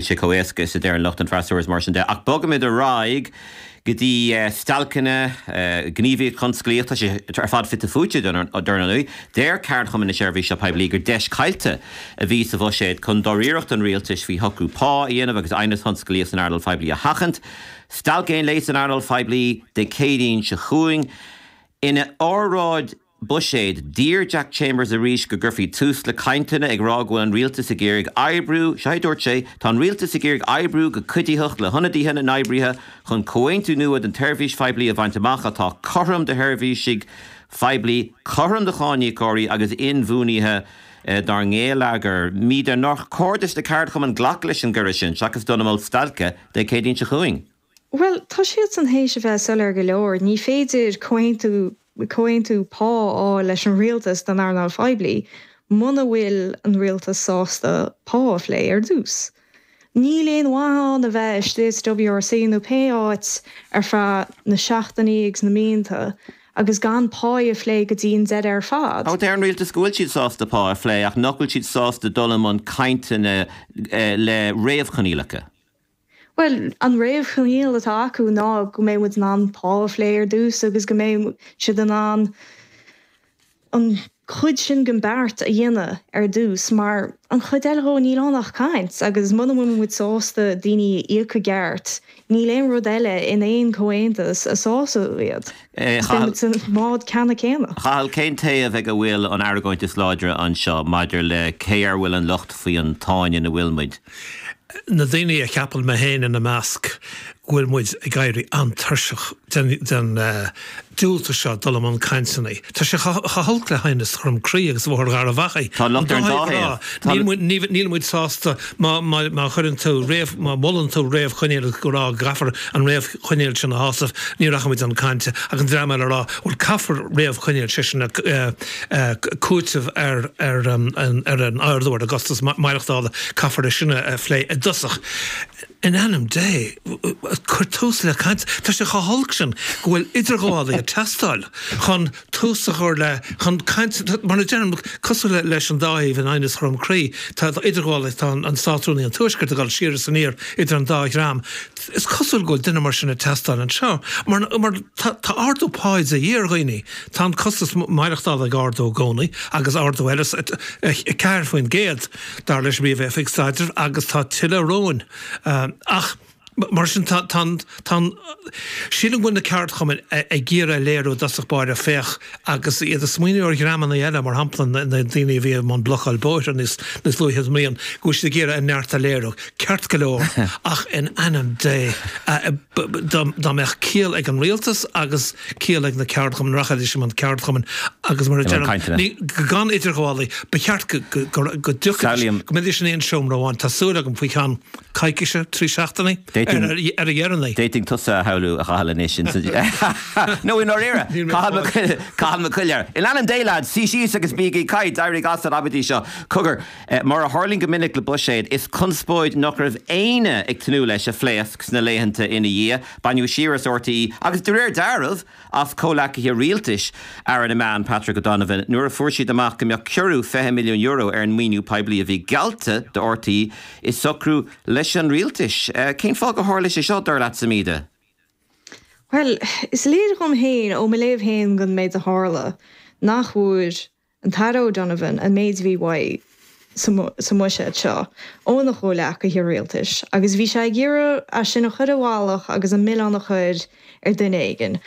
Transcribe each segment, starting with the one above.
Níl sé chomh éasca is a deireann lucht an freasúra is mar sin de. Ach bogfaimid ar aghaidh go dtí stailceanna, gníomhaíocht thionsclaíoch, tá sé ar fad fite fuaite, a déarfainn. Deir ceardchumann na seirbhíse poiblí gur deis caillte a bhí sa bhuiséad chun dáiríreacht an rialtais faoi shocrú pá a dhéanamh agus aighneas tionsclaíoch san earnáil phoiblí a sheachaint. Stailc aon lae san earnáil phoiblí Dé Céadaoin seo chugainn. Ina óráid. buiséid d'iarr Jack Chambers arís go gcuirfí tús le cainteanna, ag rá go bhfuil an rialtas ag iarraidh oibriú, seo a dúirt sé, Tá an rialtas ag iarraidh oibriú go cuiditheach le hionadaithe na n-oibrithe chun comhaontú nua don tseirbhís phoiblí a bhaint amach atá cothrom do sheirbhísigh phoiblí, cothrom do cháiníocóirí agus inbhuanaithe dár ngeilleagar. Muiris, nár chóir do na ceardchumainn glacadh leis an gcuireadh sin seachas dul i mbun stailce Dé Céadaoin seo chugainn. Bhuel, tá siadsan théis a bheith soiléir go leor, ní féidir comhaontú, comhaontú pá a fháil leis an rialtas don earnáil phoiblí muna bhfuil an rialtas sásta pá a phlé ar dtús. Níl aon mhaith ann a bheith istigh sa WRC nó pé áit ar feadh na seachtainí agus na míonta agus gan pá a phlé go dtí an deireadh ar fad. Deir an rialtas go bhfuil siad sásta pá a phlé ach nach bhfuil siad sásta dul i mbun cainteanna le réamhchoinníollacha. Bhuel, an réamhchoinníoll atá acu ná go mbeidh muid in ann pá a phlé ar dtús agus go mbeidh siad in ann an chuid sin den beart a dhéanamh ar dtús mar an chuid eile dhe níl ann ach caint agus muna bhfuil muid sásta daoine a íoc i gceart níl aon rud eile in aon chomhaontas a sásóidh iad. Beimid sa mbád ceanna céanna. A Chathail, cén taobh ag a bhfuil an argóint is láidre anseo maidir le cé air a bhfuil an locht faoi an tsáinn ina bhfuil muid? Na daoine a cheapann, mé féin ina measc, go bhfuil muid ag éirí an-tuirseach den diúltú seo dul i mbun cainteanna. Tá sé chomh holc le haighneas Dhroim Crí agus Bhóthar Gharbh Achaidh. Tá an locht ar an dá thaobh. Tá. Níl muid sásta má chuireann tú, má mholann tú réamhchoinníoll ag rá go gcaithfear an. choinníoll sin a shásamh, ní rachaidh muid chun cainte. Ach an dream eile ag rá, bhuel caithfear réamhchoinníoll, sé sin cúiteamh ar an ardú ar an gcostas maireachtála, caithfear é sin a phlé i dtosach. In ainm Dé, cuir tús le caint. Tá sé chomh holc sin go bhfuil idirghabhálaí ag teastáil chun. tús a chur le chun caint mar a deirim cosúil leis an dá thaobh in aighneas Dhroim Crí tá idirghabháil tá an Státrúnaí an Tuaiscirt ag dul siar is aniar idir an dá dhream is cosúil go bhfuil duine mar sin ag teastáil anseo mar mar tá ardú pá de dhíth ar dhaoine tá an costas maireachtála ag ardú i gcónaí agus ardú eile os 4% dar leis an bPríomh-Oifig Staidrimh agus tá tuilleadh romhainn ach Mar sin, tá an, tá an, sílim go bhfuil na ceardchumainn ag iarraidh a léiriú i dtosach báire, féach, agus iad ag smaoineamh ar dhreamanna eile, mar shampla na daoine a bhí i mbun blocáil bóithre níos luaithe sa mbliain, go bhfuil siad ag iarraidh a neart a léiriú. Ceart go leor, ach in ainm Dé, dá mbeadh ciall ag an rialtas agus ciall ag na ceardchumainn, rachaidís i mbun, ceardchumainn agus mar a deir an, ní, gan idirghabhálaí, ba cheart go, go, go dtiocfaidís, go mbeidís in aon seomra amháin, tá súil agam, faoi cheann. coicíse, trí seachtainí ar a dheireanaí. D'fhéadfainn tusa a shamhlú, a Chathail, anois ins an. nó i ndáiríre! Cathal Mac Coille, In ainm Dé, lads, suí síos agus bígí ag caint! Éirígí as an amaidí seo. Cogar, mar a tharlaíonn go minic le buiséad, is conspóid nach raibh éinne ag tnúth leis a phléasc sna laethanta ina dhiaidh. Baineadh siar as RTÉ agus, de réir dealraimh, as comhleacaithe rialtais Aire na Meán Patrick O'Donovan nuair a fuair siad amach go mbeadh ciorrú €20 milliún ar an maoiniú poiblí a bhí geallta do RTÉ i socrú leis an rialtas. Cén fáth gur tharla sé seo, dar leat, Emer? Bhuel, is léir dhom féin, ó mo léamh féin den méid a tharla, nach bhfuair An tAire O'Donovan, An méid a bhí uaidh sa mbuiséad seo óna chomhleacaithe rialtais agus bhí sé ag iarraidh é sin a chur i bhfolach agus an milleán a chur ar dhuine éigin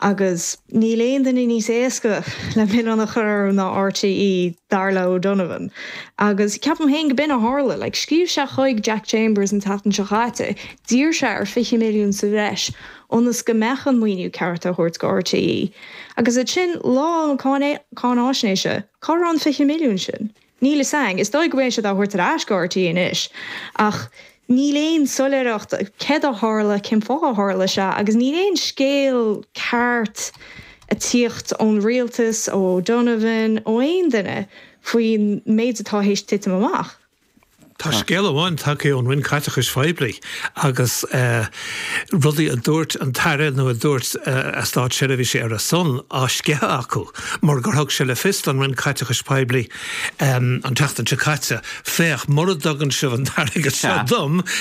agus níl aon duine níos éasca le milleán a chur orthu ná RTÉ, dar le O'Donovan. Agus ceapaim féin go b'in a tharla. Like, scríobh sé chuig Jack Chambers an tseachtain seo chaite, d'iarr sé ar 20 milliún sa bhreis, ionas go mbeadh an maoiniú ceart á thabhairt do RTÉ. Agus ansin lá an cháinaisnéis, cá raibh an 20 milliún sin? Níl fhios a'inn. Is dóigh go mbeidh siad á thabhairt ar ais do RTÉ anois ach níl aon soiléireacht cad a tharla, cén fáth a tharla sé agus níl aon scéal ceart a tíocht ón rialtas, ó O'Donovan, ó aon duine faoin méid atá théis titim amach. Tá scéal amháin tagtha ón Roinn Caiteachais Phoiblí agus rudaí a dúirt an tAire nó a dúirt a státseirbhísigh ar a son á sceitheadh acu mar gur thug sé le fios don Roinn Caiteachais Phoiblí an tseachtain seo caite, Féach, mura dtugann sibh an t-airgead seo dom,